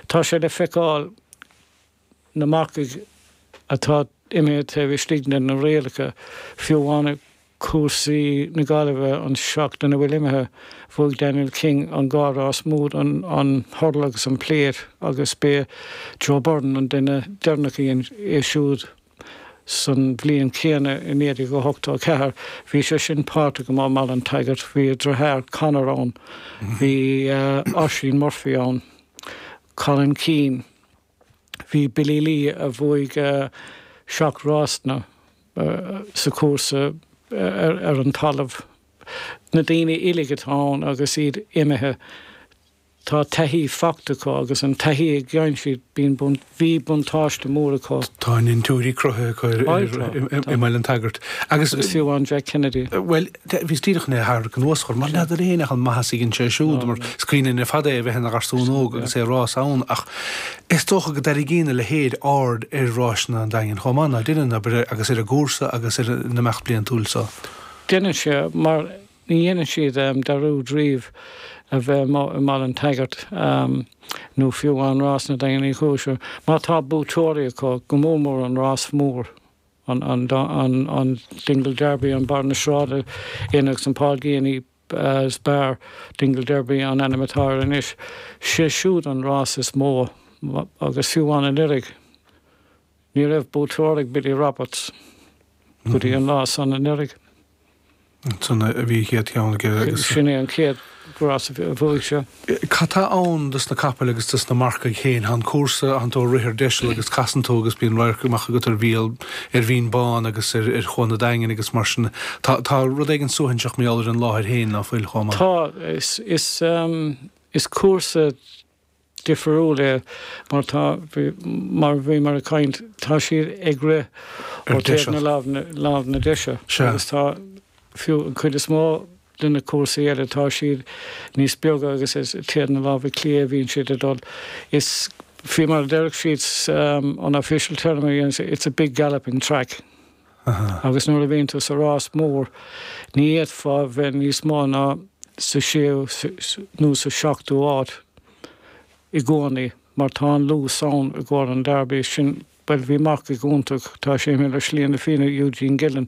Tá sé le feiceáil na marcaigh atá imithe taobh istigh de na rialacha, fiú amháin ag cúrsaí na Gaillimhe an tseachtain a bhfuil imithe. Bhuaigh Daniel King an dá rás mór, an hurdle agus an plate agus b'é Joe Byrne an duine deireanach a dhein é siúd. San bhliain céanna i 1984 bhí sé sin páirteach i mBaile an tSagairt, bhí a dritháir Conor ann, bhí Oisín Murphy ann, Colin Keane, bhí Billy Lee a bhuaigh seacht rásanna sa cúrsa ar an talamh, na daoine uilig atá ann agus iad imithe. Tá taithí faighte acu agus an taithí a fhaigheann siad, bhí buntáiste mór acu. Tá a ndintiúirí cruthaithe acu i mBaile an tSagairt agus. Is fiú amháin Jack Kennedy. Bhuel, bhíos díreach chun é a tharrac anuas, mar n'fheadar éinne ach an maitheas a thugann sé siúd, mar is cuimhne linn ar fad é a bheith ina gharsún óg agus é ag rás ann, ach is dócha go dtarraingíonn a leithéid aird ar ráiseanna an Daingin chomh maith, ná deineann, agus ar an gcúrsa agus ar an imeacht bliantúil so. Deineann sé, mar Ní dhéanann siad dearúd riamh a bheith i mBaile an tSagairt, nó fiú amháin rásanna an Daingin í chúis. Má tá buaiteoirí acu, go mór mór an rás mór, an Dingle Derby, an Barr na Sráide Inn agus an Paul Geaney's Bar Dingle Derby an ainm atá air anois, sé siúd an rás is mó, agus fiú amháin anuraidh. Ní raibh buaiteoir ag Billy Roberts go dtí an lá san anuraidh. Ansan a bhí a chéad cheann aige agus. Sin é an chéad rás a bhuaigh sé. Cad tá ann dos na capaill agus dos na marcaigh féin? Tá an cúrsa, tánn tú ag rith ar deiseal agus casann tú agus bíonn radharc amach agat ar Bhéal, ar Bhinn Bán agus ar Chuan an Daingin agus mar sin. Tá rud éigin suaithinseach mar gheall ar an láthair féin, ná fuil, chomh maith? Tá. Is cúrsa. difriúil é mar tá, mar a bhí mé ag caint, tá siad ag rith ó taobh na lámh na deise agus tá fiú an chuid is mó de na cúrsaí eile tá siad níos beaga agus is taobh na lámh clé a bhíonn siad ag dul. Is fiú mar a déarfadh siad an official term a dhéanann it's a big galloping track. Agus nuair a bhíonn tú sa rás mór, ní fhéadfá bheith níos mó ná sa séú nó sa seachtú háit i gcónaí, mar tá an luas ann i gcomhair an Derby. Sin, bhuel, bhí marcach iontach, tá sé imithe ar shlí na fírinne Eugene Gillen,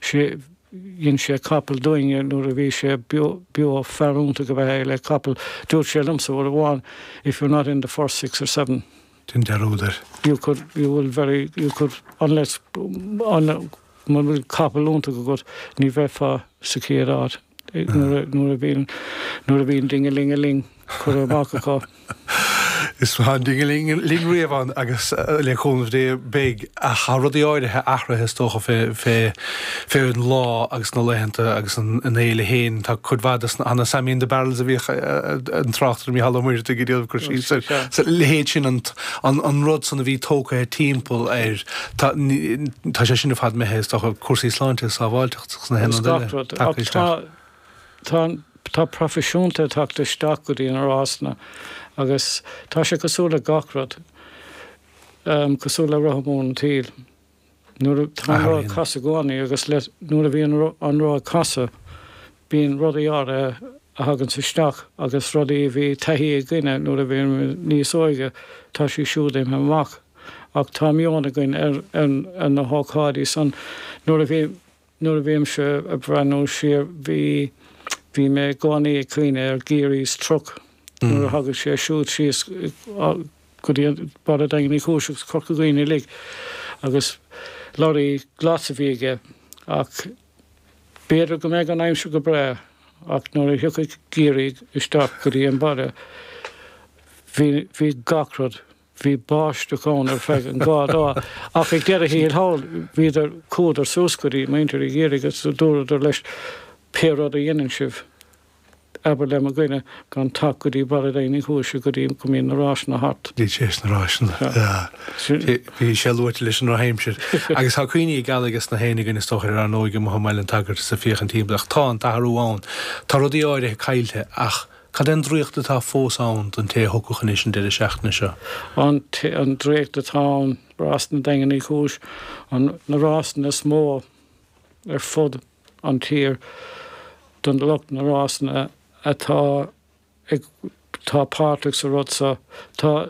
sé, dhein sé capall dúinne nuair a bhí sé beo, fear iontach ab ea é le capall. Dúirt sé liomsa uair amháin, if you're not in the first six or seven. dein dearúd air. You could, you will very, you could, unless, un, mura bhfuil capall iontach agat, ní bheifeá sa chéad áit, nuair a, nuair a bhíonn, nuair a bhíonn ding-a-ling-a-ling curtha amach acu. Is tá an ding-a-ling-a-ling riamh ann agus le cúnamh Dé beidh. ach tá rudaí áirithe athraithe is dócha fé an lá agus na laethanta agus an fhéile féin. Tá cuid mhaith de na Sammy in the Barrels a bhíodh an tráchtaire Mícheál Ó Muircheartaigh ag déanamh cur síos air, is a leithéid sin, an rud san a bhí tógtha timpeall air, tá sé sin ar fad imithe is dócha, cúrsaí sláinte is sábháilteachta agus na haon rud eile tagtha isteach. Tá proifisiúnta tagtha isteach go dtí na rásanna agus tá sé cosúil le gach rud. cosúil le roth mór an tsaoil. Nuair atá an roth ag casadh i gcónaí agus nuair a bhíonn an roth ag casadh, bíonn rudaí áirithe a thagann isteach agus rudaí a bhí taithí againne nuair a bhí níos óige, tá sé siúd imithe amach. Ach tá meon againn ar na hócáidí san nuair a bhí. Nuair a bhímse ag breathnú siar, bhí, bhí mé i gcónaí ag cuimhneamh ar Geary's Truck nuair a thagadh sé siúd síos go dtí Baile Daingean Uí Chúis agus Corca Dhuibhne uilig agus lorry glas a bhí aige ach b'fhéidir go mbeadh an aimsir go breá ach nuair a thiocfadh Geary isteach go dtí an baile bhí, bhí gach rud. Bhí báisteach ann ar feadh an dhá lá, ach ag deireadh thiar thall, bhíodar, chuadar suas go dtí muintir Gheary agus dúradar leis, Pé rud a dheineann sibh, abair le mo dhuine gan teacht go dtí Baile Daingean Uí Chúise go dtí go mbíonn na ráiseanna thart. Tar éis na ráiseanna. Bhí sé luaite leis an drochaimsir. Agus tá cuimhní geala ages na héinne againn, is dócha, ar ár n-óige amuigh i mBaile an tSagairt is ag féachaint timpeall. Ach tá an t-athrú ann. Tá rudaí áirithe caillte ach. Cad é an draíocht atá fós ann don té a thiocfadh anois an deireadh seachtaine seo? An draíocht atá ann, rásanna Daingean Uí Chúis, na rásanna is mó ar fud an tír don lucht na rásanna atá ag tá páirteach sa rud seo. Tá.